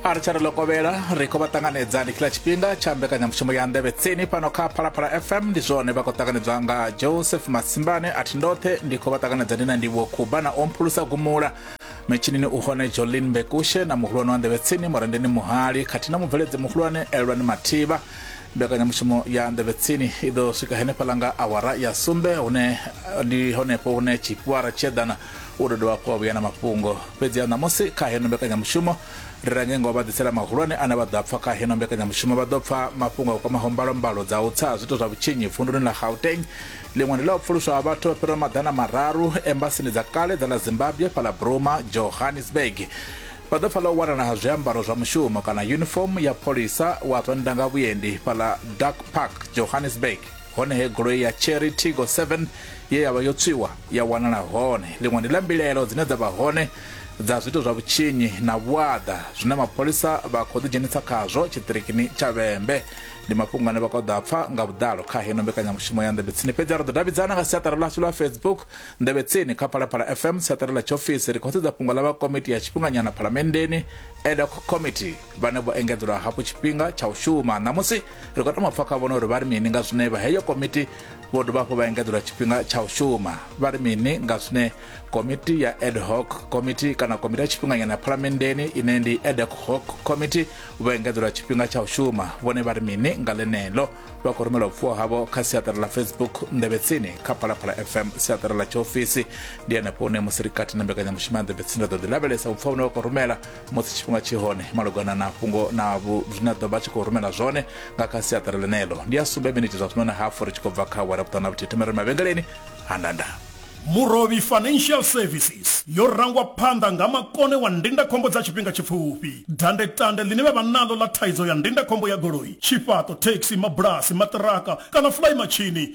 a ri tsha ri lokovhela ri khou vha ṱanganedza ndi kila tshifhinga tsha mbekanyamushumo ya nḓevhe tsini fhano kha phalaphala fm ndi zwone vha khou ṱanganedzwa nga joseph masimbane a thi ndoṱhe ndi khou vha ṱanganedza ndi na ndivho khuba na omphulusa gumula metshinini u hone jolin bekushe na muhulwane wa nḓevhe tsini murendeni muhali khathihi na mubveledzi muhulwane elwani mathivha mbekanyamushumo ya nḓevhe tsini i ḓo swika henefhaḽa nga awara ya sumbe hune ndi honefho hune tshifhiwara tshi eḓana u ḓo dovha hafhu wa vhuya na mafhungo fhedzi a ṋamusi kha heno mbekanyamushumo ri range ngo vha ḓisela mahulwane ane vha ḓo a pfa kha heno mbekanyamushumo vha ḓo pfa mafhungo a kwamaho mbalombalo dza u tsa ha zwiito zwa vhutshinyi vunduni ḽa gauteng ḽiṅwe ndi ḽa u pfuluswa ha vhathu vha fhiraho maḓana mararu embasini dza kale dza ḽa zimbabwe fhaḽa bruma johannesburg vha ḓo pfa ḽa u wanala ha zwiambaro zwa mushumo kana uniform ya pholisa wa zwa ndanga vhuendi fhaḽa dark park johannesburg hone he goloi ya cherry tigo 7 ye ya vha yo tswiwa ya wanala hone ḽiṅwe ndi ḽa mbilaelo dzine dza vha hone dza zwito zwa vhutshinyi na vhuaḓa zwine mapholisa vha khou ḓidzhenisa khazwo tshiṱirikini tsha vhembe ndi mafhungo ane vha khou ḓo a pfa nga vhuḓalo kha heno mbekanyamushumo ya nḓevhe tsini fhedzi a ri ḓo davhidzana nga siaṱari ḽashu ḽa facebook nḓevhe tsini kha phalaphala fm siaṱari ḽa tshiofisi ri khou sedza fhungo ḽa vha komiti ya tshifhinganyana phalamenndeni edoc committee vhane vho engedzelwa hafhu tshifhinga tsha u shuma ṋamusi ri khou tama pfa kha vhona uri vha ri mini nga zwine vha heyo komiti vho dovha hafhu vha engedzelwa tshifhinga tsha u shuma vha ri mini nga zwine komiti ya ad hoc komiti kana komiti ya tshifhinganyana ya phalamenndeni ine ndi ad hoc komiti vho engedzelwa tshifhinga tsha u shuma vhone vha ri mini nga ḽeneḽo vha khou rumela vhupfuwo havho kha siaṱari ḽa facebook nḓevhetsini kha phalaphala fm siaṱari ḽa tshiofisi ndi henefho hune musi ri kati na mbekanyamushumo ya nḓevhetsini ra ḓo ḓi lavhelesa vhupfuwo vhune vha khou rumela musi tshifhinga tshi hone malugana na fhungo na vhu- zwine a ḓo vha a tshi khou rumela zwone nga kha siaṱari ḽeneḽo ndi a sumbe miniti zwa zwino na hafu ri tshi khou bva kha awara vhuṱanu na vhuthihi thome ri mavhengeleni ha ndanda murovhi financial services yo rangwa phanḓa nga makone wa ndindakhombo dza tshifhinga tshipfufhi dandetande ḽine vha vha naḽo ḽa thaidzo ya ndindakhombo ya goloi tshifhaṱo thekhisi mabulasi maṱiraka kana fulayi matshini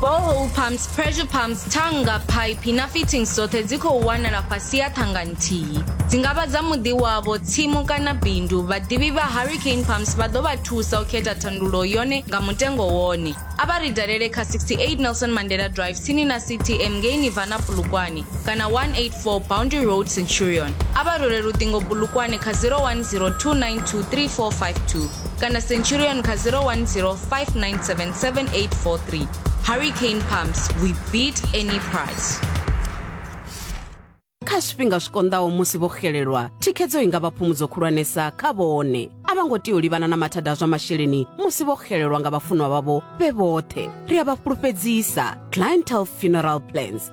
borehole pumps pressure pumps thanga phaiphi na fittings dzoṱhe dzi khou wanala fhasi ya thanga nthihi dzi nga vha dza muḓi wavho tsimu kana bindu vhaḓivhi vha hurricane pumps vha ḓo vha thusa u khetha thandulo yone nga mutengo wone a vha ri dalele kha 68 nelson mandela drive tsini na ctm ngei nivana bulukwane kana 184 boundary road centurion a vha role luṱingo bulukwane kha 0102923452 kana centurion kha 010 5977 hurricane pumps we beat any price kha zwifhinga zwi konḓaho musi vho xelelwa thikhedzo i nga vha phumudzo khulwanesa kha vhone a vha ngo tea u livhana na mathada a zwa masheleni musi vho xelelwa nga vhafunwa vhavho vhe vhoṱhe ri a vha fhulufhedzisa clientele funeral plans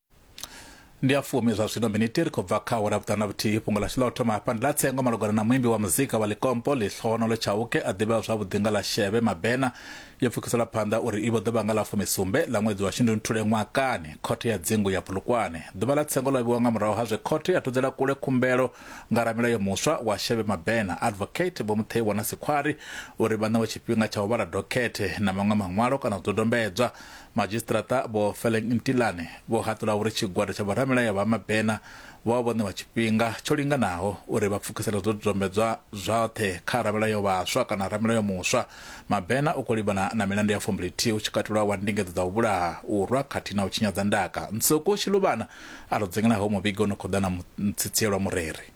ndi a fumi zwa zwino miniti ri khou bva kha awara vhuṱanu na vhuthihi fhungo ḽashu ḽa u thoma hafha ndi ḽa tsengo malugana na muimbi wa muzika wa likompo ḽihlohonolo tshauke a ḓivhewa zwavhuḓi nga ḽa sheve mabena yo pfukisela phanḓa uri i vho ḓo vha nga ḽa fumisumbe ḽa ṅwedzi wa shundunthule ṅwakani khothe ya dzingu ya bulukwane ḓuvha ḽa tsengo ḽo vhiwa nga murahu ha zwe khothe ya thudzela kule khumbelo nga ramilayo muswa wa sheve mabena advocate vho mutheiwa na sikhwari uri vha ṋewe tshifhinga tsha u vhala dokhethe na maṅwe maṅwalo kana zwidodombedzwa Madzhisiṱiraṱa Vho Feleng Ntilane vho haṱula uri tshigwada tsha vhoramilayo vha Mabena vho vha vho ṋewa tshifhinga tsho linganaho uri vha pfukisele zwidodombedzwa zwoṱhe kha ramilayo vhaswa kana ramilayo muswa. Mabena u khou livhana na milandu ya fumbili-thihi hu tshi katelwa wa ndingedzo dza u vhulaha, u rwa khathihi na u tshinyadza ndaka. Nsuku Shiluvhana a ri dzengela ho muvhigo u no khou ḓa na mutsitsielwa mureri.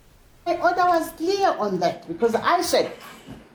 My order was clear on that because I said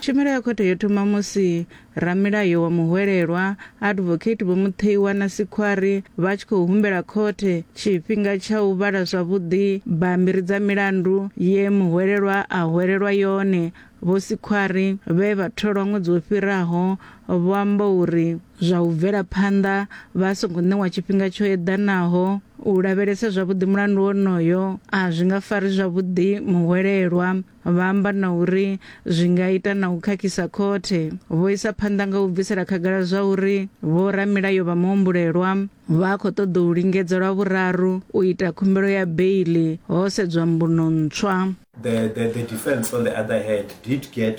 Tshumelo ya khothe yo thoma musi ramilayo wa muhwelelwa, Advocate Vho Mutheiwa na Sikhwari vha tshi khou humbela khothe tshifhinga tsha u vhala zwavhuḓi bammbiri dza milandu ye muhwelelwa a hwelelwa yone. Vho Sikhwari, vhe vha tholwa ṅwedzi wo fhiraho, vho amba uri, Zwa u bvela phanḓa vha songo ṋewa tshifhinga tsho eḓanaho u lavhelesa zwavhuḓi mulandu wonoyo a zwi nga fari zwavhuḓi muhwelelwa, vha amba na uri zwi nga ita na u khakhisa khothe. Vho isa phanḓa nga u bvisela khagala zwa uri vhoramilayo vha muhumbulelwa vha khou ṱoḓa u lingedza lwa vhuraru u ita khumbelo ya beiḽi ho sedzwa mbuno ntswa. The, the, the defence on the other hand did get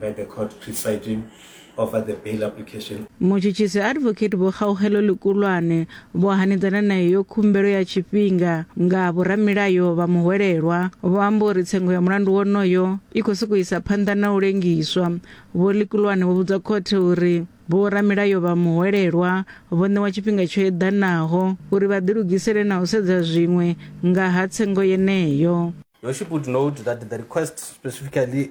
by the court presiding over the bail application. mutshutshisi advocate vho kgaugelo likulwane vho hanedzana na iyo khumbelo ya tshifhinga nga vhoramilayo vha muhwelelwa vho amba uri tsengo ya mulandu wonoyo i khou sokou isa phanḓa na u lengiswa vho likulwane vho vhudza khothe uri vhoramilayo vha muhwelelwa vho ṋewa tshifhinga tsho eḓanaho uri vha ḓilugisele na u sedza zwiṅwe nga ha tsengo yeneyo Your Worship would note that the request specifically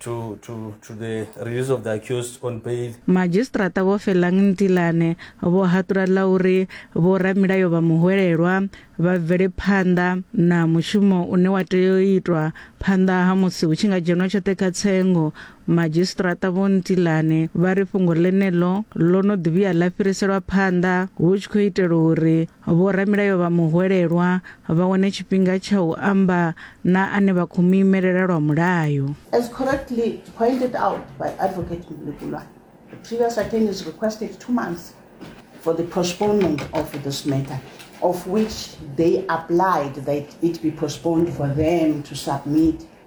to, to, to the release of the accused on bail. Madzhisiṱiraṱa Vho Felang Ntilane vho haṱula ḽa uri vhoramilayo vha muhwelelwa vha bvele phanḓa na mushumo une wa tea u itwa phanḓa ha musi hu tshi nga dzhenwa tshoṱhe kha tsengo. Madzhisiṱiraṱa Vho Ntilane vha ri fhungo ḽeneḽo ḽo no ḓi vhuya ḽa fhiriselwa phanḓa hu tshi khou itela uri Vhoramilayo vha muhwelelwa vha wane tshifhinga tsha u amba na ane vha khou mu imelela lwa mulayo. As correctly pointed out by Advocate Mlekulwana, the previous attorneys requested two months for the postponement of this matter, of which they applied that it be postponed for them to submit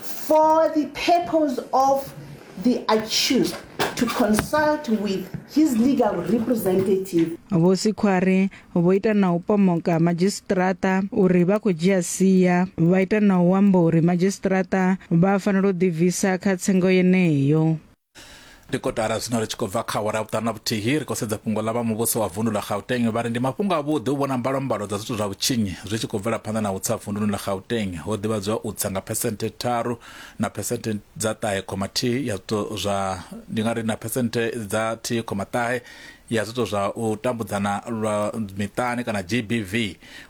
for the purpose of the accused to consult with his legal representative vho sikhwari vho ita na u pomoka madzhisiṱiraṱa uri vha khou dzhia sia vha ita na u amba uri madzhisiṱiraṱa vha fanela u ḓibvisa kha tsengo yeneyo ndi kotara zwino ri tshi khou bva kha awara vhuṱanu na vhuthihi ri khou sedza fhungo ḽa vha muvhuso wa vundu ḽa gauteng vha ri ndi mafhungo avhuḓi u vhona mbalambalo dza zwithu zwa vhutshinyi zwi tshi khou bvela phanḓa na u tsa vunduni ḽa gauteng ho ḓivhadzwa u tsa nga phesenthe tharu na phesenthe dza ṱahe khoma thihi ya zwithu zwa ndi nga ri na phesenthe dza thihi khoma ṱahe ya zwithu zwa u tambudzana lwa miṱani kana gbv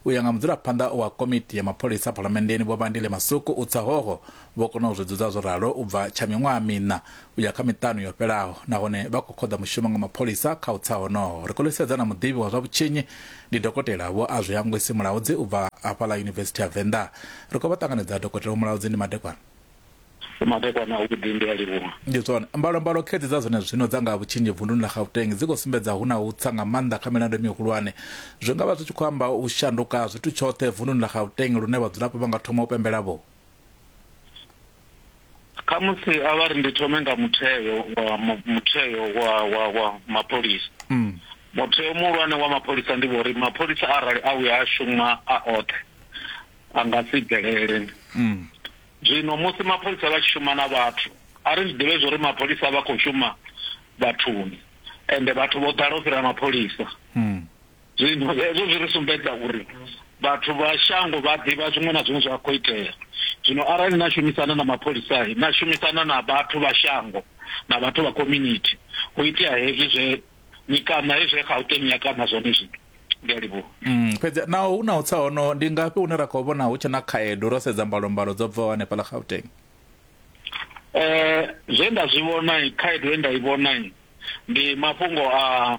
u ya nga mudzulaphanḓa wa komiti ya mapholisa phalamenndeni vho vhandile masuku u tsa hoho Vho kona u zwi dzudza zwo ralo u bva tsha miṅwaha miṋa u ya kha miṱanu yo fhelaho nahone vha khou khoḓa mushumo nga mapholisa kha u tsa honoho. Ri khou ḽi sedza na muḓivhi wa zwa vhutshinyi ndi Dokotela Vho Azwihangwisi Mulaudzi u bva hafha ḽa Yunivesithi ya Venḓa. Ri khou vha ṱanganedza Dokotela Vho Mulaudzi ndi madekwana. Ndi madekwana a vhuḓi ndi a livhuwa. Ndi zwone. Mbalombalo khedzi dza zwene zwino dza nga ha vhutshinyi vunḓuni ḽa Gauteng dzi khou sumbedza hu na u tsa nga maanḓa kha milandu mihulwane. Zwi nga vha zwi tshi khou amba u shanduka ha zwithu tshoṱhe vunḓuni ḽa Gauteng lune vhadzulapo vha nga thoma u pembela vho. khamusi a vha ri ndi thome nga mutheo wa mutheo wa wa wa mapholisa mm. mutheo muhulwane wa mapholisa ndi vhori mapholisa arali a vhuya a shuma a oṱhe a nga si bvelele mm. zwino musi mapholisa vha tshi shuma na vhathu a ri zwi ḓivhe zwo uri mapholisa vha khou shuma vhathuni ende vhathu vho ḓala u fhira mapholisa mm. Zwino hezwo zwi ri sumbedza uri vhathu vha shango vha ḓivha zwiṅwe na zwiṅwe zwa khou itea. Zwino arali na shumisana na mapholisa, na shumisana na vhathu vha shango na vhathu vha community, hu itea hezwi zwe ni kaṋa he zwe Gauteng ya kaṋa zwone zwino. Ndi a livhuwa. Fhedzi naho hu na u tsa hono, ndi ngafhi hune ra khou vhona hu tshe na khaedu ro sedza mbalombalo dzo bvaho hanefhaḽa Gauteng? Zwe nda zwi vhona, khaedu ye nda i vhona ndi mafhungo a.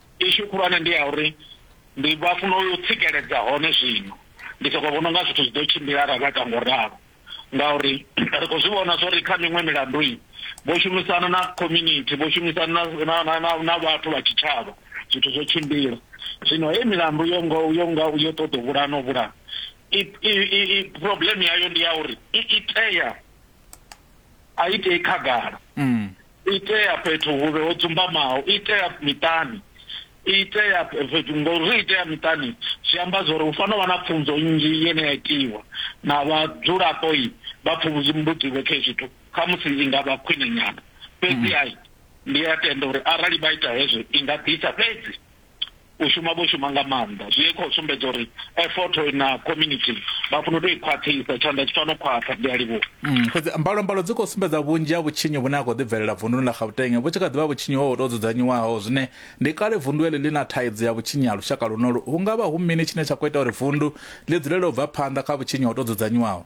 Issue khulwane ndi ya uri ndi vha funa u tsikeledza hone zwino ndi soko vhona unga zwithu zwi ḓo tshimbila arali vha ita ngo ralo ngauri ri khou zwi vhona zwori kha miṅwe milandu vho shumisana na community vho shumisana na vhathu vha tshitshavha zwithu zwo tshimbila zwino hei milandu yo ngo yo nga yo ṱoḓa u vhulana u vhulana i problem yayo ndi ya uri i itea A i tei khagala, i tea fhethu hu re ho dzumbamaho, i tea miṱani, i tea fhethu. Ngauri ri i tea miṱani zwi amba zwa uri hu fanela u vha na pfunzo nnzhi ine ya itiwa na vhadzulapo vha pfumbudziwe kha hezwi zwithu, khamusi i nga vha khwine nyana. Fhedzi ndi a tenda uri arali vha ita hezwo i nga ḓisa fhedzi u shuma vho shuma nga maanḓa zwi khou sumbedza uri effort na community vha funa u tou i khwaṱhisa tshanḓa tshi fano khwaṱha ndi a livhuwa mm, fhedzi mbalombalo dzi khou sumbedza vhunzhi ha vhutshinyi vhune ha khou ḓibvelela vunduni ḽa gauteng vhu tshi kha ḓivha vhutshinyi ho tou dzudzanyiwaho zwine ndi kale vundu eḽi ḽi na thaidzo ya vhutshinyi ha lushaka lunolu hu nga vha hu mini tshine tsha khou ita uri vundu ḽi dzulele u bva phanḓa kha vhutshinyi ho tou dzudzanyiwaho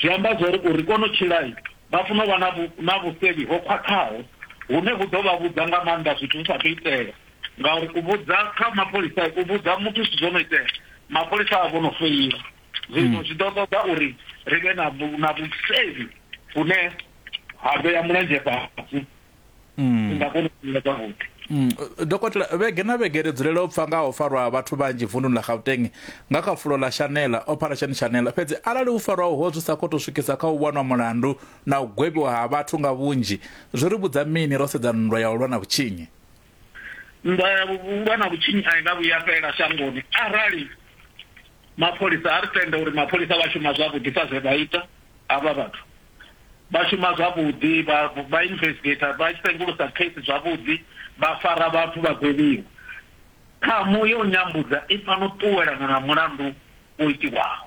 Zwi amba zwa uri u ri kone u tshila, vha funa u vha na na vhusevhi ho khwaṱhaho hune vhu ḓo vha vhudza nga maanḓa zwithu zwi sa athu itea. Ngauri u vhudza kha mapholisa, u vhudza muthu zwithu zwo no itea, mapholisa a vha vho no feila. Zwino zwi ḓo ṱoḓa uri ri vhe na na vhusevhi vhune ha vhea mulenzhe fhasi. mm. nga kona u ila zwavhuḓi mm. dokotela vhege na vhege ri dzulela u pfa nga ho farwa vhathu vhanzhi vunḓuni ḽa gauteng nga kha fulo ḽa shanela operation shanela fhedzi arali u farwa uho zwi sa khou tou swikisa kha u wanwa mulandu na u gwevhiwa ha vhathu nga vhunzhi zwi ri vhudza mini ro sedza nndwa ya u lwa na vhutshinyi nndwa ya u lwa na vhutshinyi a i nga vhuya fhela shangoni arali Mapholisa, a ri tende uri mapholisa vha shuma zwavhuḓi kha zwe vha ita. Havha vhathu vha shuma zwavhuḓi, vha vha investigator, vha sengulusa case zwavhuḓi, vha fara vhathu vha gwevhiwa. Ṱhamu ya u nyambudza i fanela u ṱuwelana na mulandu wo itiwaho.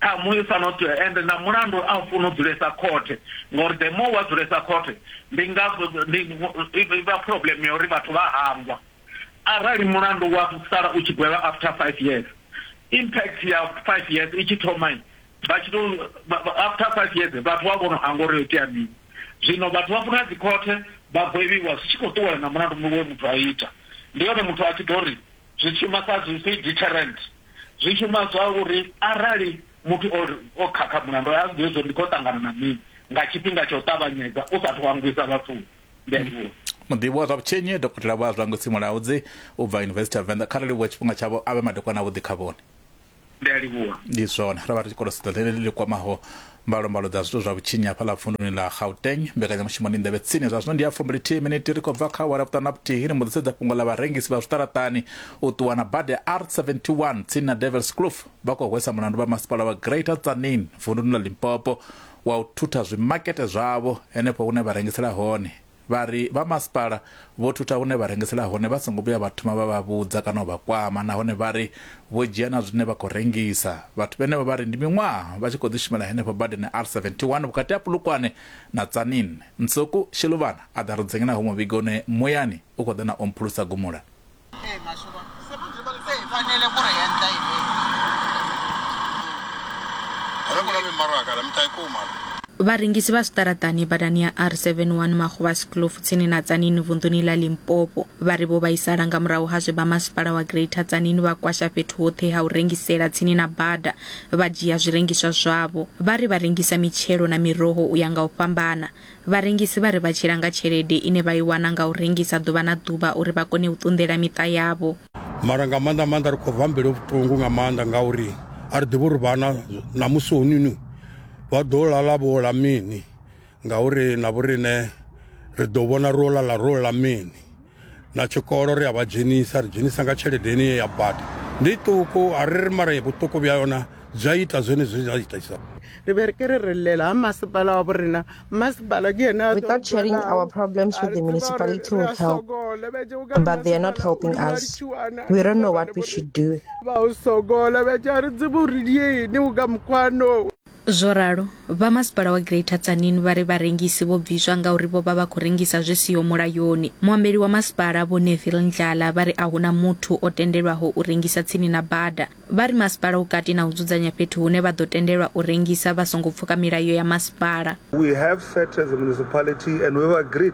Ṱhamu i fanela u ṱuwe, ende na mulandu a u funi u dzulesa khothe, ngori the more wa dzulesa khothe ndi nga ndi ivha problem ya uri vhathu vha hangwa. Arali mulandu wa sala u tshi gwevha after five years impact ya five years i tshi thoma vha tshi to after five years vhathu vha vhono hangwa uri yo itea mini zwino vhathu vha funa dzi khothe vha gwevhiwa zwi tshi khou ṱuwela na mulandu muṅwe muthu a ita ndi hone muthu a tshi ḓo ri zwi shuma sa zwi si deterrent zwi shuma zwa uri arali muthu o o khakha mulandu a ḓivhe zwo ndi khou ṱangana na mini nga tshifhinga tsha u ṱavhanyedza u sathu hangwisa vhathuni Ndivhuwo. muḓivhi wa zwa vhutshinyi dokotela vho azwango tsimulaudzi u bva yunivesithi ya venḓa kha ri livhuwe tshifhinga tshavho a vhe madekwana avhuḓi kha vhone Ndi a livhuwa. ndi zwone ro vha ri tshi kolosedzo ḽeneḽi ḽi kwamaho mbalombalo dza zwithu zwa vhutshinyi hafha ḽa vunduni ḽa gauteng mbekanyamushumo ndi nḓevhe tsini zwa zwino ndi ya fumbulithihi miniti ri khou bva kha awara vhuṱanu na vhuthihi ri mbo ḓi sedza fhungo ḽa vharengisi vha zwiṱaraṱani u ṱuwa na bada ya r71 tsini na devils kloof vha khou hwesa mulandu vha masipala wa greater tsanin vunduni ḽa limpopo wa u thutha zwimakete zwavho henefho hune vha rengisela hone, vha ri vha masipala vho thutha hune vha rengisela hone vha songo vhuya vha thoma vha vha vhudza kana u vha kwama nahone vha ri vho dzhia na zwine vha khou rengisa. Vhathu vhenevho vha ri ndi miṅwaha vha tshi khou ḓi shumela henefho badani R71 vhukati ha Polokwane na Tzaneen. Ntsoko Sheluvhana a ḓa ri dzengenavho muvhigo une muyani u khou ḓa na omphulusa gumula. Vharengisi vha zwiṱaraṱani badani ya R71 Magobasi Kloof tsini na Tsanini vunḓuni ḽa Limpopo vha ri vho vhaisala nga murahu ha zwe vha masipala wa Greater Tsanini vha kwasha fhethu hoṱhe ha u rengisela tsini na bada vha dzhia zwirengiswa zwavho. Vha ri vha rengisa mitshelo na miroho u ya nga u fhambana. Vharengisi vha ri vha tshila nga tshelede ine vha i wana nga u rengisa ḓuvha na ḓuvha uri vha kone u ṱunḓela miṱa yavho. Mara nga maanḓa maanḓa ri khou rwa mbilu vhuṱungu nga maanḓa ngauri a ri ḓivhi uri vhana ṋamusi honinu vha ḓo lala vho ḽa mini ngauri na vhoriṋe ri ḓo vhona ro lala ro ḽa mini. na tshikolo ri a vha dzhenisa ri dzhenisa nga tshelede ine ya bada ndi ṱuku a ri ri mara vhuṱuku vha yona zwi a ita zwone zwi a itisa re be re ke re re llela ha masepala wa borena masepala ke ene without sharing our problems with the municipality will help but they are not helping us we don't know what we should do ba o sokola be tša re tsebo re diene o ka mokwano Zwo ralo, vha masipala wa Greater Tzaneen vha ri vharengisi vho bviswa ngauri vho vha vha khou rengisa zwi siho mulayoni. Muambeli wa masipala Vho Neville Ndlala vha ri a hu na muthu o tendelwaho u rengisa tsini na bada. Vha ri masipala u kati na u dzudzanya fhethu hune vha ḓo tendelwa u rengisa vha songo pfuka milayo ya masipala. We have set as a municipality and we've agreed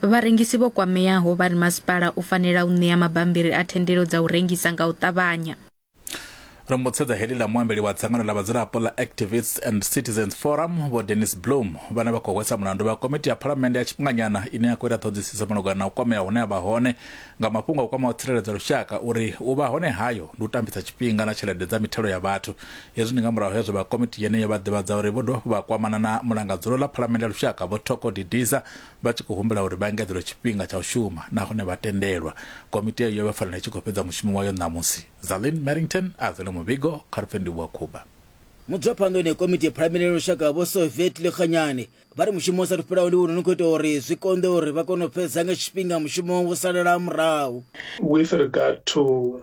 Vharengisi vho kwameaho vha ri masipala u fanela u ṋea mabambiri a thendelo dza u rengisa nga u ṱavhanya. Ro mutshedza heḽi ḽa muambeli wa dzangano ḽa vhadzulapo ḽa Activists and Citizens Forum, Vho Dennis Bloom, vhane vha khou hwesa mulandu vha komiti ya phalamennde ya tshifhinganyana ine ya khou ita ṱhoḓisiso malugana na u kwamea hune a vha hone nga mafhungo a kwamaho tsireledzo ya lushaka uri u vha hone hayo ndi u tambisa tshifhinga na tshelede dza mithelo ya vhathu. Hezwi ndi nga murahu hezwo vha komiti yeneyo vha ḓivhadza uri vho dovha hafhu vha kwamana na mulangadzulo ḽa phalamennde ya lushaka Vho Thoko Didiza vha tshi khou humbela uri vha engedzelwe tshifhinga tsha u shuma nahone vha tendelwa komiti eyo yo vha fanela i tshi khou fhedza mushumo wayo ṋamusi zalin merrington a zwele muvhigo kha lupfendiwi wa khuba Mudzwaphanḓoni ya komiti ya Phalamennde ya Lushaka Vho Soviet Lekganyane vha ri mushumo u sathu fhelaho ndi wone u khou ita uri zwi konḓe uri vha kone u fhedza nga tshifhinga mushumo wo salela murahu. With regard to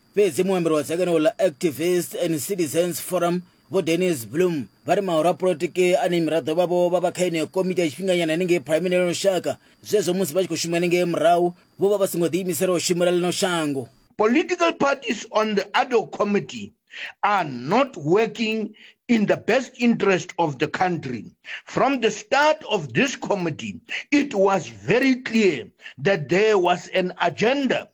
fhedzi muambeli wa dzangano ḽa activist and citizens forum vho dennis bloom vha ri mahoro a polotiki ane miraḓo vhavho vha vha kha yeneyo komiti ya tshifhinganyana hanengei phuraimini lino shaka zwezwo musi vha tshi khou shuma hanengei murahu vho vha vha songo ḓiimisela u shumela lino shango Political parties on the ad hoc committee are not working in the best interest of the country. From the start of this committee, it was very clear that there was an agenda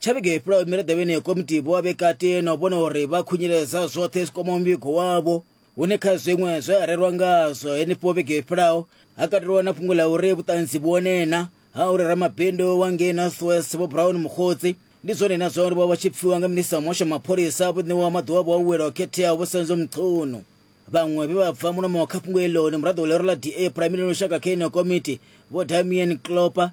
tsha vhege i fhelaho miraḓo yeneyo komiti vho vha vhe kati na u vhona uri vha khunyeledza zwoṱhe zwi kwamaho muvhigo wavho hune kha zwiṅwe zwe a rerwa ngazwo henefho vhege i fhelaho ha katelwa na fhungo ḽa uri vhuṱanzi vhuonena ha uri ramabindu wa ngei northwest vho brown mukhodzi ndi zwone na zwa uri vho vha tshi pfiwa nga minista wa muhasho mapholisa vho ṋewa maḓuvha avho a u wela o khetheaho vho senzo mchunu vhaṅwe vhe vha bva mulomo kha fhungo eloni muraḓo wa lero ḽa da prime minister lushaka kha ino komiti vho damien clopa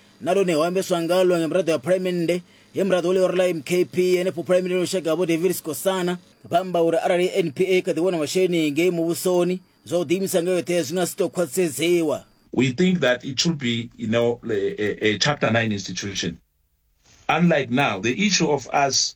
na lone ho ambeswa ngalo nga miraḓo ya phalamennde he muraḓo wa ḽioro ḽa mkp henefho phalamennde no shaka vho david sikosana vha amba uri arali npa i kha ḓi wana masheleni ngei muvhusoni zwa u ḓiimisa nga yoṱhe zwi nga si tou khwaṱhisedzewa We think that it should be you know, a, a, a Chapter 9 institution. Unlike now, the issue of us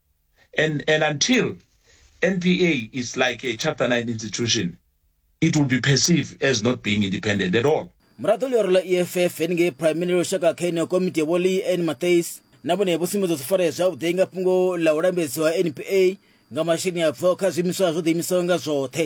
and and until NPA is like a chapter 9 institution it will be perceived as not being independent at all muraḓo ḽioro ḽa eff heningei primary lushaka kha yeneyo komiti ya vholi n matais na vhone vho sumbedza zwi farea zwavhuḓi nga fhungo ḽa u lambedziwa npa nga masheleni a bvaho kha zwiimiswa zwo ḓiimisaho nga zwoṱhe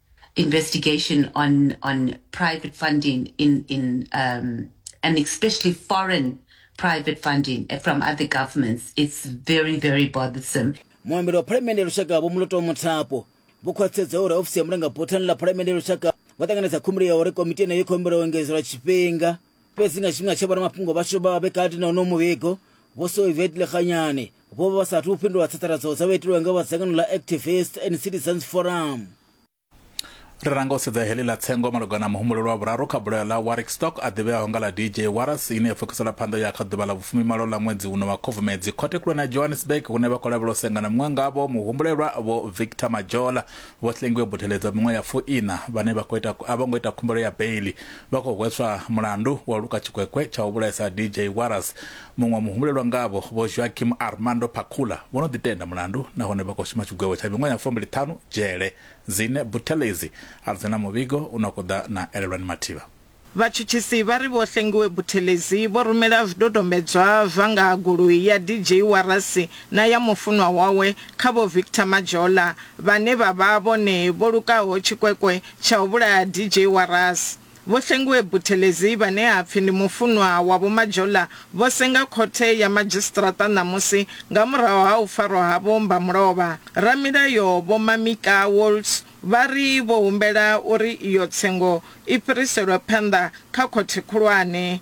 investigation on on private funding in in um, and especially foreign private funding from other governments. It's very very bothersome. muambeli wa phalamende ya lushaka vho muloto muthapo vho khwaṱhisedza uri ofisi ya mulangaphothani ḽa phalamende ya lushaka vha ṱanganedza khumbelo ya uri komiti yeneyo i khou humbela u engedzelwa tshifhinga fhedzi nga tshifhinga tshe vhoramafhungo vhashu vha vha vhe kati na uno muvhigo vho soivet lekhanyane vho vha vha sathu u fhindula tsatsaradzo dza vha itilwa nga vha dzangano ḽa activist and citizens forum ri ranga u sedza heḽi ḽa tsengo malugana na muhumbulelo wa vhuraru kha bulayo ḽa warwick stock a ḓivheaho nga ḽa dj waras ine ya pfukisela phanḓa ya kha ḓuvha ḽa vhufumimalo ḽa ṅwedzi uno wa khubvumedzi khothe khulwane ya johannesburg hune vha khou lavhela u sengana muṅwe ngavho muhumbulelwa vho victor majola vho hlengiwe butheledza miṅwe ya fuiṋa vhane vha khou ita a vho ngo ita khumbelo ya beili vha khou hweswa mulandu wa u luka tshikwekwe tsha u vhulaisa DJ Warras. Muṅwe muhumbulelwa ngavho, Vho Joaquim Armando Pacula, vho no ḓitenda mulandu nahone vha khou shuma tshigwevho tsha miṅwaha ya fumbili ṱhanu dzhele. Zine Buthelezi a dzi na muvhigo u no khou ḓa na Elelwani Mathiba. Vhatshutshisi vha ri Vho Hlengiwe Buthelezi vho rumela zwidodombedzwa zwa nga ha goloi ya DJ Warras na ya mufunwa wawe kha Vho Victor Majola, vhane vha vha vhone vho lukaho tshikwekwe tsha u vhulaya DJ wa Ras. Vho Hlengiwe Buthelezi vhane ha pfi ndi mufunwa wa Vho Majola vho senga khothe ya madzhisiṱiraṱa ṋamusi nga murahu ha u farwa ha Vho Mbamulovha. Ramilayo Vho Mamika Waltz vha ri vho humbela uri iyo tsengo i fhiriselwe phanḓa kha khothe khulwane.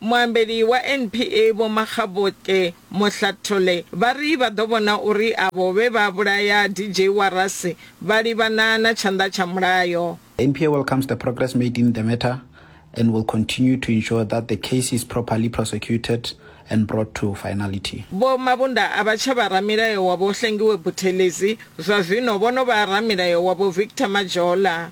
Muambeli wa NPA Vho Makgabotle Mohlathole vha ri vha ḓo vhona uri avho vhe vha vhulaya DJ Warase vha livhana na tshanḓa tsha mulayo. NPA welcomes the progress made in the matter. and will continue to ensure that the case is properly prosecuted and brought to finality. Vho Mabunda a vha tsha vha ramilayo wa Vho Hlengiwe Buthelezi, zwa zwino vho no vha ramilayo wa Vho Victor Majola.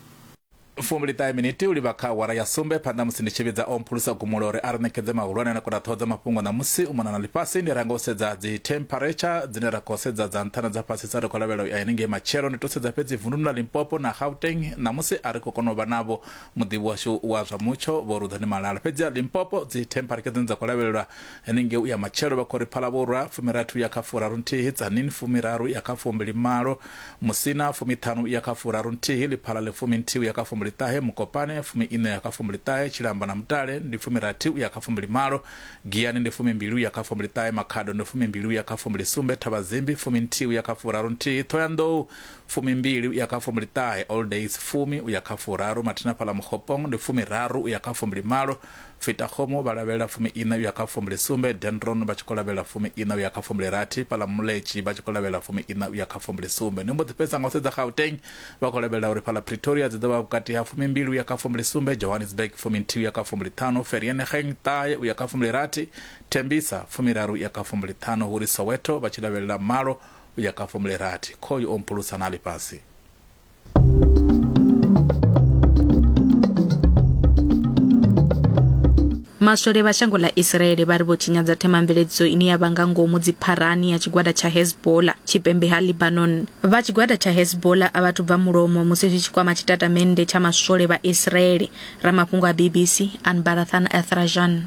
Fumbili ṱahe minithi u livha kha awara ya sumbe phanḓa musi ndi tshi vhidza o mphulusa gumulo uri a ri ṋekedze mahulwane na kodaṱhoho dza mafhungo ṋamusi u mona na ḽifhasi ndi ranga u sedza dzi temperature dzine ra khou sedza dza nṱha na dza fhasisa ri khou lavhelela u ya henengei matshelo ndi to sedza fhedzi vunduni ḽa limpopo na gauteng ṋamusi a ri khou kona u vha navho muḓivhi washu wa zwa mutsho vho ruḓani malala fhedzi a limpopo dzi thempareke dzine dza khou lavhelelwa henengei u ya matshelo vha khou ri phalavhura fumirathu ya kha furaru nthihi tsanin fumiraru ya kha fumbili malo musina fumiṱhanu ya kha furaru nthihi ḽiphala ḽi fumi nthihi ya kha fumbili ṱahe mukopane fumi iṋa ya kha fumbili ṱahe tshilamba na mutale ndi fumirathi u ya kha fumbili malo giyani ndi fumi mbili u ya kha fumbili ṱahe makhado ndi fumi mbili u ya kha fumbili sumbe thavhazimbi fumi nthihi u ya kha furaru nthihi thoyandou Fumimbili uya kha fumbiliṱahe, All Days, fumi uya kha furaru, Mathina Fhaḽa Mokgopong, ndi fumiraru uya kha fumbilimalo, Fitakgomo vha lavhelela fumi-iṋa uya kha fumbilisumbe, Dendron vha tshi khou lavhelela fumi-iṋa uya kha fumbilirathi, Fhaḽa Muletshi vha tshi khou lavhelela fumi-iṋa uya kha fumbilisumbe. Ndi mbo ḓi fhedzisa nga u sedza Gauteng, vha khou lavhelela uri fhaḽa Pretoria dzi ḓo vha vhukati ha fumimbili uya kha fumbilisumbe, Johannesburg fuminthihi uya kha fumbiliṱhanu, Vereeniging ṱahe uya kha fumbilirathi, Tembisa fumiraru uya kha fumbiliṱhanu, hu ri Soweto vha tshi lavhelela malo, u ya kha fomula irathi khoyu o mphulusa na ḽifhasi maswole vha shango ḽa israele vha ri vho tshinyadza themamveledziso ine ya vha nga ngomu dzipharani ya tshigwada tsha hezbola tshipembe ha libanon vha tshigwada tsha hezbola a vhathu bva mulomo musi zwi tshi kwama tshitatamennde tsha maswole vha israele ramafhungo a bbc anbarathan athrajan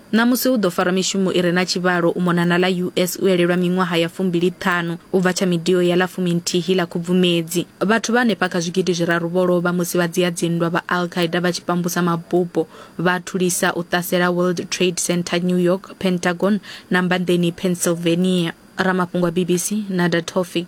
Ṋamusi hu ḓo farwa mishumo i re na tshivhalo u mona na ḽa US u elelwa miṅwaha ya fumbili ṱhanu u bva tsha midio ya ḽa fumi nthihi ḽa Khubvumedzi. Vhathu vha henefha kha zwigidi zwiraru vho lovha musi vha dzia dzinndwa vha Al Qaeda vha tshi pambusa mabupo vha a thulisa u ṱasela World Trade Centre New York, Pentagon na Mbanḓeni Pennsylvania. Ramafhungo a BBC, Nader Tofiq.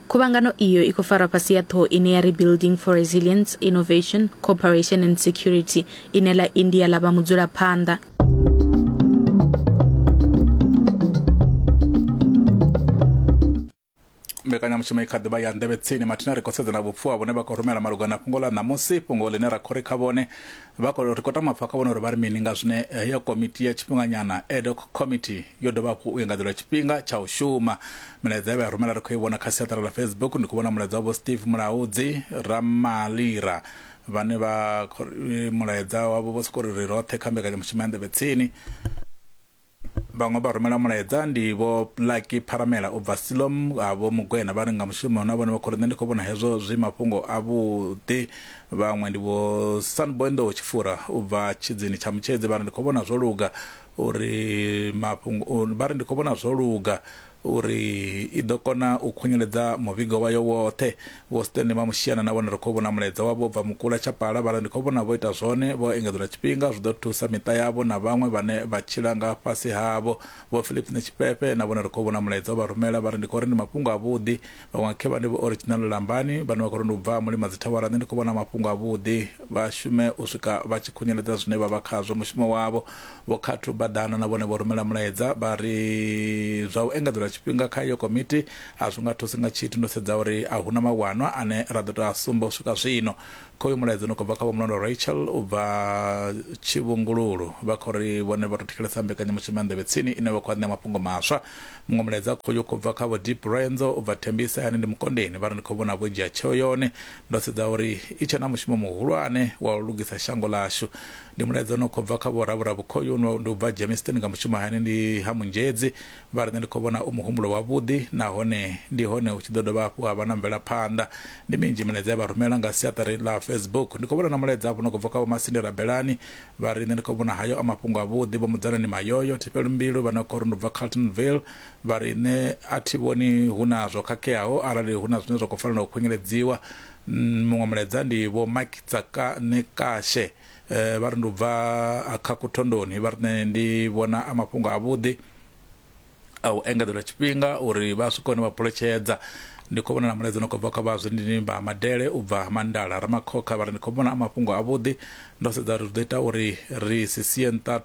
Khuvhangano iyo i khou farwa fhasi ya ṱhoho ine ya ri Building for Resilience, Innovation, Cooperation and Security, ine ḽa India ḽa vha mudzulaphanḓa. mbekanyamushumo i kha ḓivha ya nḓevhe tsini mathina ri khou sedzana vhupfuwa vhune vha khou rumela malugana na fhungo ḽa ṋamusi fhungo ḽine ra khou ri kha vhone Vha khou ri khou tama pfa kha vhone uri vha ri mini nga zwine heyo komiti ya tshifhinganyana ad hoc committee yo dovha hafhu u engadzelwa tshifhinga tsha u shuma. Milaedza ye vha i rumela ri khou i vhona kha siaṱari ḽa Facebook, ndi khou vhona mulaedza wa Vho Steve Mulaudzi, Ramalira, vhane vha khou ri mulaedza wavho vho sokou ri ri roṱhe kha mbekanyamushumo ya Nḓevhe Tsini. vhaṅwe vha rumela mulaedza ndi vho lucky pharamela u bva silom a vho mugwena vha ri nga mushumo na vhone vha khori nṋe ndi khou vhona hezwo zwi mafhungo avhuḓi vhaṅwe ndi vho sanboendowo tshifura u bva tshidzini tsha mutshedzi vha ri ndi khou vhona zwo luga uri mafhungo vha ri ndi khou vhona zwo luga uri i ḓo kona u khunyeledza muvhigo wayo woṱhe. Vho Stanley Mamushiana na vhone ri khou vhona mulaedza wavho u bva Mukula Chapala vha ri ndi khou vhona vho ita zwone vho engedzelwa tshifhinga zwi ḓo thusa miṱa yavho na vhaṅwe vhane vha tshila nga fhasi havho. Vho Phillips Netshifhefhe na vhone ri khou vhona mulaedza u vha rumela vha ri ndi khou ri ndi mafhungo avhuḓi vhaṅwe khe vha ndi vho original lambani vhane vha khou ri ndi u bva mulima dzithawara nṋe ndi khou vhona mafhungo a vhuḓi vha shume u swika vha tshi khunyeledza zwine vha vha khazwo mushumo wavho vho khathu badana na vhone vho rumela mulaedza vha ri zwa u engedzelwa tshifhinga kha iyo komiti a zwi nga thusi nga tshithu ndo sedza uri a huna mawanwa ane ra ḓo tou a sumba u swika zwino Kha uyu mulaedza u no khou bva kha Vho Mulondwa Rachel u bva Tshivhungululu, vha khou ri vhone vha tou thetshelesa mbekanyamushumo ya Nḓevhe Tsini ine vha khou vha ṋea mafhungo maswa. Muṅwe mulaedza khoyu u khou bva kha Vho Deep Renzo u bva Thembisa Hayani ndi Mukondeni, vha ri ndi khou vhona vho dzhia tsheo yone. Ndo sedza uri i tshe na mushumo muhulwane wa u lugisa shango ḽashu. Ndi mulaedza u no khou bva kha Vho Ravhura Vhukhoyu, ndi u bva Germiston nga Mushumo Hayani ndi ha Munzhedzi, Vha ri, Nṋe ndi khou vhona u muhumbulo wavhuḓi nahone ndi hone hu tshi ḓo dovha hafhu ha vha na mvelaphanḓa. Ndi minzhi milaedza ye vha rumela nga siaṱari ḽa Facebook. Ndi khou vhona na mulaedza hafhu no khou bva kha Vho Masindi Rabelani. Vha ri, Nṋe ndi khou vhona hayo a mafhungo avhuḓi. Vho Mudzanani Mayoyo Thifhelumbilu vha no khou ri ndi u bva Carltonville vha ri, Nṋe a thi vhoni hu na zwo khakheaho arali hu na zwine zwa khou fanela u khunyeledziwa. Muṅwe mulaedza ndi Vho Mike Tsakanekashe vha ri ndi u bva Akhaku Thondoni vha ri, Nṋe ndi vhona a mafhungo avhuḓi. a u engedzelwa tshifhinga uri vha swike hone vha phuletshedza ndi khou vhona na mulaedza no khou bva kha vha zwindinimba madele u bva mandala ramakhokha vha ri ndi khou vhona a mafhungo avhuḓi ndo sedza uri zwi ḓo ita uri ri si sie nṱha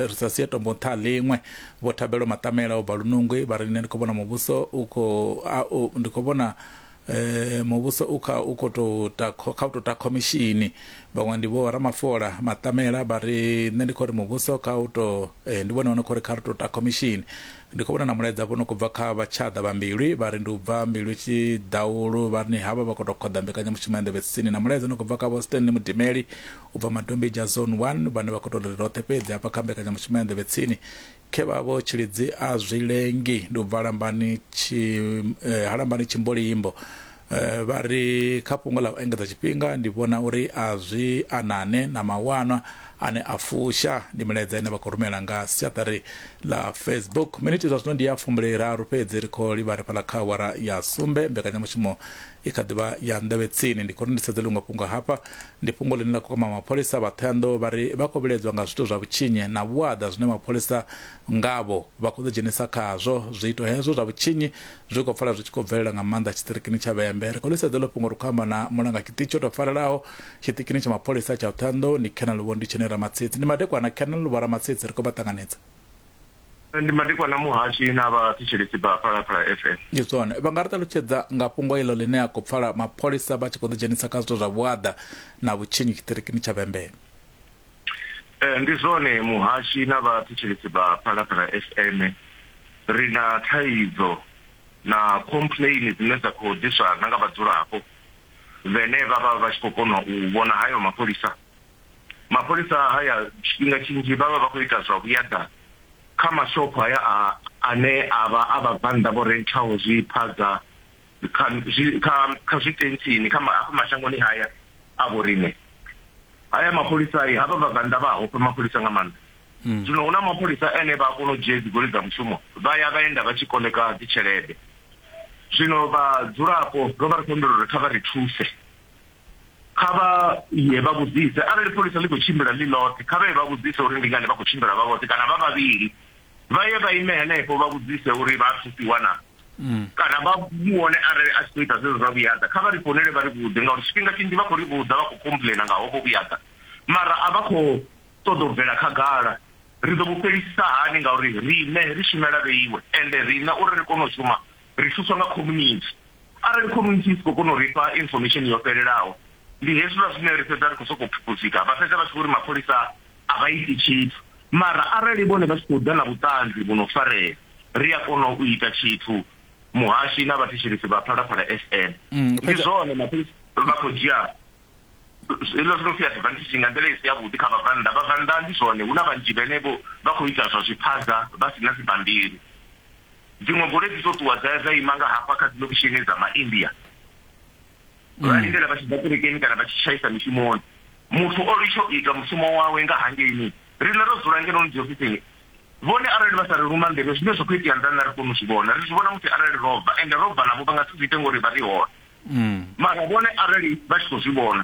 ri sa sie tombo nṱha ḽiṅwe vho thabelo maṱamela u bva lunungwi vha ri nṋe ndi khou vhona muvhuso u khou ndi khou vhona Muvhuso u kha u khou tou ta kha u tou ta khomishini vhaṅwe ndi vho Ramafola Maṱamela vha ri nṋe ndi khou ri muvhuso kha u tou ndi vhone vho no khou ri kha ri tou ta khomishini. Ndi khou vhona na mulaedza vho no khou bva kha Vhatshaḓa vha Mbilwi vha ri ndi u bva Mbilwi Tshiḓaulu vha ri havha vha khou tou khoḓa mbekanyamushumo ya nḓevhe tsini na mulaedza u no khou bva kha Vho Stanley Mudimeli u bva Madombidzha Zone One vhane vha khou tou ri roṱhe fhedzi hafha kha mbekanyamushumo ya nḓevhe tsini Khevhavho tshilidzi a zwi lengi ndi u bva halambani tshi eh, halambani tshimbolimbo eh, vha ri kha fhungo ḽa u engedza tshifhinga ndi vhona uri a zwi anane na mawanwa ane a fusha ndi milaedza ine vha khou rumela nga siaṱari ḽa facebook miniti zwa zwino ndi ya fumbili raru fhedzi ri khou livha ri fhaḽa kha awara ya sumbe mbekanyamushumo I kha ḓi vha ya nḓevhe tsini. Ndi khou ri ndi sedze ḽiṅwe fhungo hafha. Ndi fhungo ḽine ḽa khou kwama mapholisa. Vha Thohoyandou vha ri vha khou vhilaedzwa nga zwiito zwa vhutshinyi na vhuaḓa zwine mapholisa ngavho vha khou ḓidzhenisa khazwo. Zwiito hezwo zwa vhutshinyi zwi khou pfala zwi tshi khou bvelela nga maanḓa tshiṱirikini tsha Vhembe. Ri khou ḽi sedza heḽo fhungo ri khou amba na mulanga tshiṱitshi o tou farelaho tshiṱikini tsha mapholisa tsha Thohoyandou, ndi Colonel Vho Nditshenyi Ramatsitsi. Ndi madekwana Colonel Vho Ramatsitsi ri khou vha ṱanganedza. ndi madekwana muhashi na vhathetshelesi vha phalaphala fm ndi zwone vha nga ri ṱalutshedza nga fhungo iḽo ḽine a khou pfala mapholisa vha tshi khou ḓidzhenisa kha zwithu zwa vhuaḓa na vhutshinyi tshiṱirikini tsha vhembee eh, ndi zwone muhashi na vhathetshelesi vha phalaphala fm ri na thaidzo na complain dzine dza khou ḓiswa na nga vhadzulapo vhene vha vha vha tshi khou kona u vhona hayo mapholisa Mapholisa a haya tshifhinga tshinzhi vha vha vha khou ita zwa vhuyaḓa kha mashopho haya a ane a vha a vhabvannḓa vho renthaho zwiphaza kha kha kha zwitentsini kha afha mashangoni haya a vhoriṋe. Haya mapholisa havha vhabvannḓa vha a ofha mapholisa nga maanḓa. Zwino hu na mapholisa ane vha a kona u dzhia dzigoloi dza mushumo vha ya vha enda vha tshi koḽeka dzitshelede. Zwino vhadzulapo ro vha ri khou humbela uri kha vha ri thuse kha vha ye vha vhudzise arali pholisa ḽi khou tshimbila ḽi ḽoṱhe kha vha ye vha vhudzise uri ndi ngani vha khou tshimbila vha vhoṱhe kana vha vhavhili vha ye vha ime henefho vha vhudzise uri vha thusiwa na mm. kana vha vhone arali a tshi khou ita zwezwo zwa vhuyaḓa kha vha ri founele vha ri vhudze ngauri tshifhinga tshinzhi vha khou ri vhudza vha khou complaina nga hovho vhuyaḓa mara a vha khou ṱoḓa u bvela khagala ri ḓo vhu fhelisisa hani ngauri riṋe ri shumela vheiwe ende riṋe uri ri kone u shuma Ri thuswa nga khomunithi. Arali khomunithi i si khou kona u ri fha infomesheni yo fhelelaho, ndi hezwiḽa zwine ri fhedza ri khou sokou phuphudzika. Vha fhedza vha tshi vho ri mapholisa a vha iti tshithu. Mara arali vhone vha tshi khou ḓa na vhuṱanzi vhu no farea, ri a kona u ita tshithu, Muhashi na vhathetshelesi vha Phalaphala FM. Ndi zwone, mapholisa vha khou dzhia hezwiḽa zwi no pfi advantage nga nḓila i si yavhuḓi kha vhabvannḓa. Vhabvannḓa ndi zwone hu na vhanzhi vhane vho vha khou ita zwa zwiphaza vha si na dzibammbiri. Dziṅwe goloi dzi tou ṱuwa dza ya dza ima nga hafha kha dzilokishini dza Maindia, vha mm. lindela vha tshi ḓa kerekeni kana vha tshi tshaisa mishumoni. Muthu o litsho ita mushumo wawe nga hangeini, riṋe ro dzula ngeno ni dziofisini vhone arali vha sa ri luma nḓevhe zwine zwa khou itea nḓani na ri koni u zwi vhona ri zwi vhona musi arali ro bva ende ro bva navho vha nga si zwi ite ngori vha ri hone mm. mara vhone arali vha tshi khou zwi vhona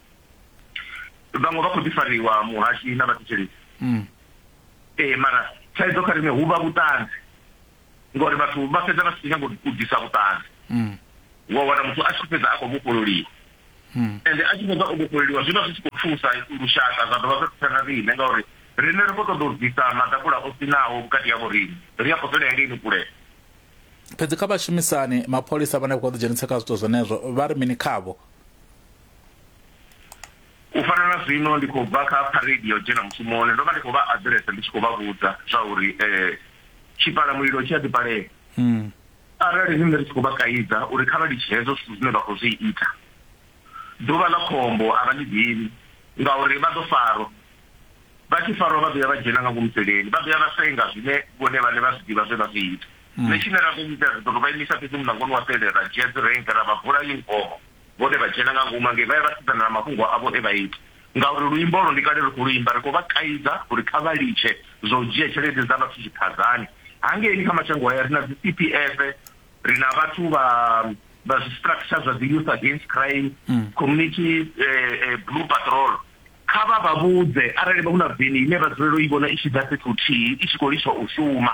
vhaṅwe vha khou ḓi fariwa muhashi na vhathetshelesi mm. ee mara thaidzo kha riṋe hu vha vhuṱanzi ngori vhathu vha fhedza vha si nyanga u ḓisa vhuṱanzi mm. wa wana muthu a tshi fhedza a khou vhofhololiwa mm. ende a tshi fhedza o vhofhololiwa zwi vha zwi tshi khou thusa lushaka zwa dovha zwa thusa na riṋe ngauri riṋe ri khou ṱoḓa u ḓisa maḓakula o sinaho vhukati ya vhoriṋe ri a khou fhela hengeini kulea fhedzi kha vhashumisani mapholisa vhane vha khou ḓi dzhenisa kha zwithu zwenezwo vha ri mini khavho U fana na zwino ndi khou bva kha phareidi ya u dzhena mushumoni, ndo vha ndi khou vha aḓiresa ndi tshi khou vha vhudza zwauri tshipalamulilo tshi a ḓipalea. Arali riṋe ri tshi khou vha kaidza uri kha vha litshe hezwo zwithu zwine vha khou zwi ita, ḓuvha ḽa khombo a vha ḽi ḓivhi, ngauri vha ḓo farwa. Vha tshi farwa vha ḓo ya vha dzhena nga ngomu seleni, vha ḓo ya vha senga zwine vhone vhaṋe vha zwi ḓivha zwe vha zwi ita. Nṋe tshine ra ḓo ita, ri ḓo tou vha imisa fhedzi mulangoni wa sele, ra dzhia dzirennge ra vha bvula yunifomo. Vhone vha dzhena nga ngomu hangei vha ya vha sedzana na mafhungo avho e vha ita, ngauri luimbo olwo ndi kale ri khou lu imba. Ri khou vha kaidza uri kha vha litshe zwa u dzhia tshelede dza vhathu tshiphaḓani. Hangeini kha mashango haya ri na dzi CPF, ri na vhathu vha vha zwi structure zwa dzi Youth Against Crime, Community Blue Patrol. Kha vha vha vhudze arali hu na veni ine vha dzulela u i vhona i tshi ḓa fhethu huthihi i tshi khou litsha u shuma.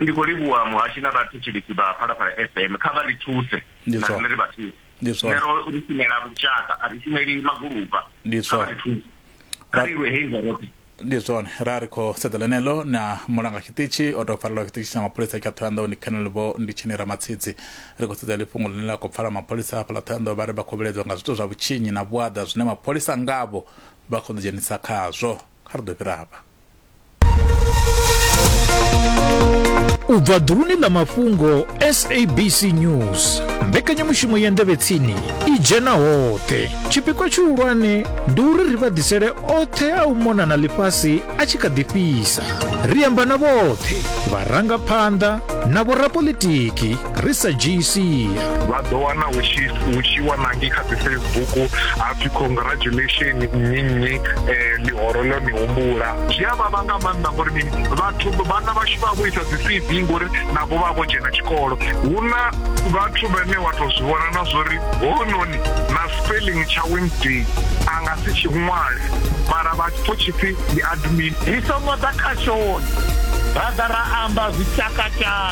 Ndi khou livhuwa muhashi na vhathetshelesi vha Phalaphala FM. Kha vha ri thuse Ndi na swah. riṋe ri vha thuse. Ndi swah. Nṋe ro ri shumela lushaka, a ri shumeli magulupa. Ndi Kha vha swah. ri thuse. Kha ri lwe hei nga roṱhe. Ndi zwone, ra ri khou sedza ḽeneḽo na mulanga tshiṱitshi o tou farelwa tshiṱitshi tsha mapholisa tsha Thohoyandou ndi Colonel Vho Nditsheni Ramatshidzi. Ri khou sedza heḽi fhungo ḽine ḽa khou pfala mapholisa a hafhaḽa Thohoyandou vha ri vha khou vhilaedzwa nga zwithu zwa vhutshinyi na vhuaḓa zwine mapholisa ngavho vha khou ḓidzhenisa khazwo. Kha ri ḓo fhira hafha. u bva ḓuluni ḽa mafhungo sabc news mbekanyamushumo ya ndevhetsini i dzhena hoṱhe tshipikwa tshihulwane ndi uri ri vha ḓisele oṱhe a u mona na ḽifhasi a tshi kha ḓi fhisa ri amba na vhoṱhe vharangaphanḓa na vhorapolitiki ri sa dzhii sia vha ḓo wana hu tshi hu tshi wanangi kha dzi facebook ha pfhi congratulation nnyi nnyi um ḽihoro ḽo ni humbula zwi a vhavha nga maanḓa ngori mini vhathu vhana vhashu vha vho isa dzi c v ngori navho vha vho dzhena tshikolo hu na vhathu vhane wa tou zwi vhona na zwori hounoni na spelling tsha wednesday a nga si tshi ṅwale mara vha pfo tshipfi ndi admin ri songo ḓa kha shoni ra ḓa ra amba zwi tshakatshaka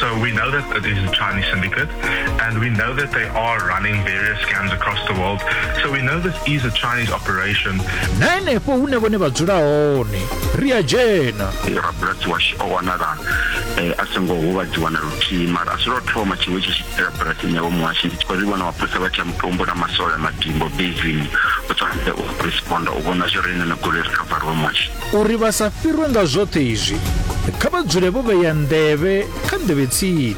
So we know that it is a Chinese syndicate, and we know that they are running various scams across the world. So we know this is a Chinese operation. na henefho hune vhone vha dzula hone ri a dzhena rabulasi washu o wanala eh, a songo huvhadziwa na luthihi mara a si lwo thoma tshiṅwe tshi tshi itela bulasini yawe muhasho ndi tshi khou ri vhona mapholisa vha tsha mutombo na masole a madimbo bezini u tshwanetse u responda u vhona zwi re ine na goloi ri khavariwe muhasho Uri vha sa fhirwe nga zwoṱhe izwi, kha vha dzule vho vhea nḓevhe kha nḓevhe tsini,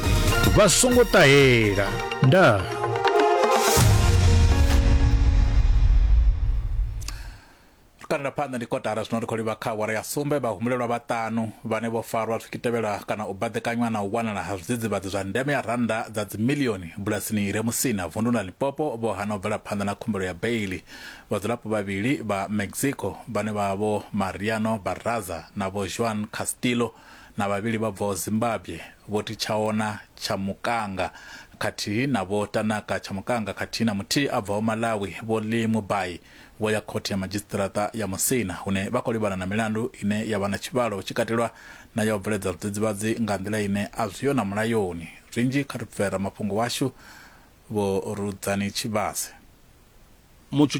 vha songo ṱahela. Ndaa. kanela phanḓa ndi kotara zwino ri khou livha kha awara ya sumbe vhahumulelwa vhaṱanu vhane vho farwa zwi kitevhela kana u baḓekanywa na u wanala ha zwidzidzivhadzi zwa ndeme ya rannda dza dzimilioni bulasini i re musina vundu la lipopo vho hana u bvela phanḓa na khumbelo ya beili Vhadzulapo vhavhili vha Mexico vhane vha vha Vho Mariano Barraza na Vho Juan Castillo na vhavhili vha bvaho Zimbabwe Vho Tichaona Chamukanga khathihi na Vho Tanaka Chamukanga khathihi na muthihi a bvaho Malawi Vho Lee Mubai vho ya Khothe ya Madzhisiṱiraṱa ya Musina hune vha khou livhana na milandu ine ya vha na tshivhalo hu tshi katelwa na ya u bveledza zwidzidzivhadzi nga nḓila ine a zwiho na mulayoni. Zwinzhi kha ri pfe ramafhungo washu Vho Rudzani Tshivhase. Mutshutshisi